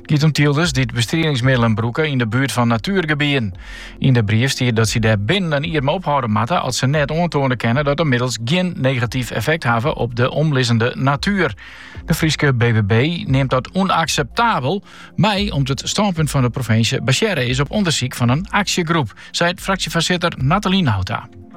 It giet om tylders dy't bestriedingsmiddelen brûke yn de buert fan natuergebieden. Yn de brief stiet dat sy dêr binnen in jier mei ophâlde moatte as se net oantoane kinne dat de middels gjin negatyf effekt hawwe op de omlizzende natuer. De Fryske BBB neamt dat ûnakseptabel, mei om't it stânpunt fan de provinsje basearre is op ûndersyk fan in aksjegroep, seit fraksjefoarsitter Natalie Nauta.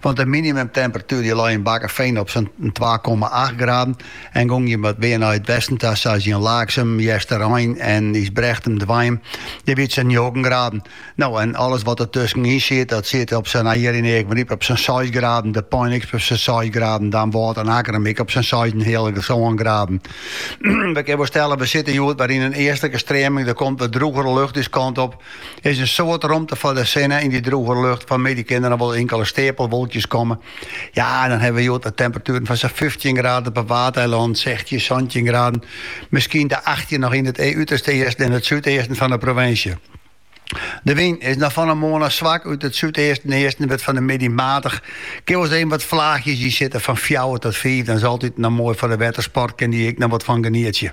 Want de minimumtemperatuer dy lei yn Bakkefean op sa'n twa komma acht graden en gongen je wat mear nei it westen ta, sa as yn Laaksum, Easterein en Ysbrechtum dwein. Dêr wie it sa'n njoggen graden. No, en alles wat der tuskenyn siet, dat siet op sa'n, no hjir yn Eagmaryp, op sa'n seis graden, De Pein ek op sa'n seis graden, Damwâld en Akkerum ek op sa'n seisenheale graden. We kinne wol stelle, we sitte hjoed wer yn in eastlike streaming, der komt wat droegere lucht ús kant op. Der is in soad romte foar de sinne yn dy droege lucht. Fan 'e middei kinne der noch wol inkele steapelwolkjes komme. Ja, en dan hawwe we hjoed de temperatueren fan sa'n fyftjin graden op 'e Waadeilannen, sechstjin, santjin graden, miskien de achttjin noch yn it uterste easten en it súdeasten fan de provinsje. De wyn is noch fan 'e moarn ôf swak út it súdeasten en easten en wurdt fan 'e middei matich. Kin wol eens wat flaachjes yn sitte fan fjouwer tot fiif, dan is altyd noch moai foar de wettersport, kin dy ek noch wat fan genietsje.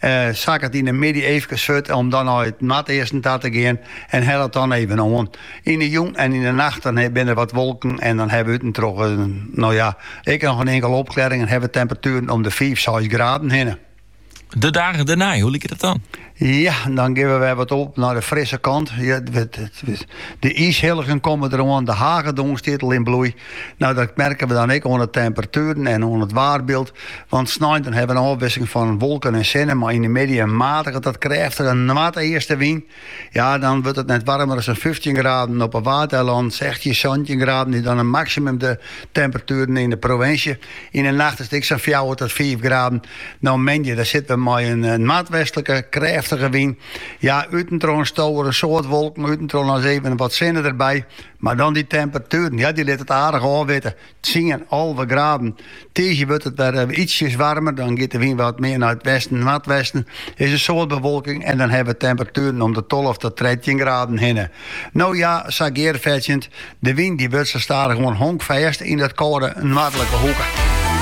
Eh, sakket yn de middei eefkes furt om dan nei it noardeasten ta te gean en hellet dan even oan. Yn de jûn en yn de nacht dan binne der wat wolken en dan hawwe we út en troch, eh, no ja, ek noch in inkele opklearring en hawwe temperatueren om de fiif, seis graden hinne. De dagen dêrnei, hoe liket dat dan? Ja, dan geane we wer wat op nei de frisse kant. Ja, de iishilligen komme der oan, de hagedoarn stiet al yn bloei. No, dat merke we dan ek oan de temperatueren en oan it waarbyld. Want snein hawwe we in ôfwisseling fan wolken en sinne, mei yn de middei in matige tot krêftige noardeastewyn. Ja, dan wurdt it net warmer as in 15 graden op 'e Waadeilannen, 16, 17 graden is dan 'e maksimum de temperatueren yn 'e provinsje. Yn 'e nacht is it ek sa'n fjouwer tot fiif graden. No moandei, dan sitte we mei in noardwestlike krêftige wyn. Ja, út en troch stowe der in soad wolken, út en troch ris even wat sinne derby, mar dan dy temperatueren, ja, dy litte it aardich ôfwitte. Tsien alve graden. Tiisdei wurdt it wer eh, ietsjes warmer. Dan giet de wyn wat mear nei it westen en noardwesten. Is in soad bewolking en dan hawwe we temperatueren om de 12 tot 13 graden hinne. No ja, sa gearfetsjend. De wyn dy wurdt sa stadichoan honkfêst yn dat kâlde noardlike hoeke.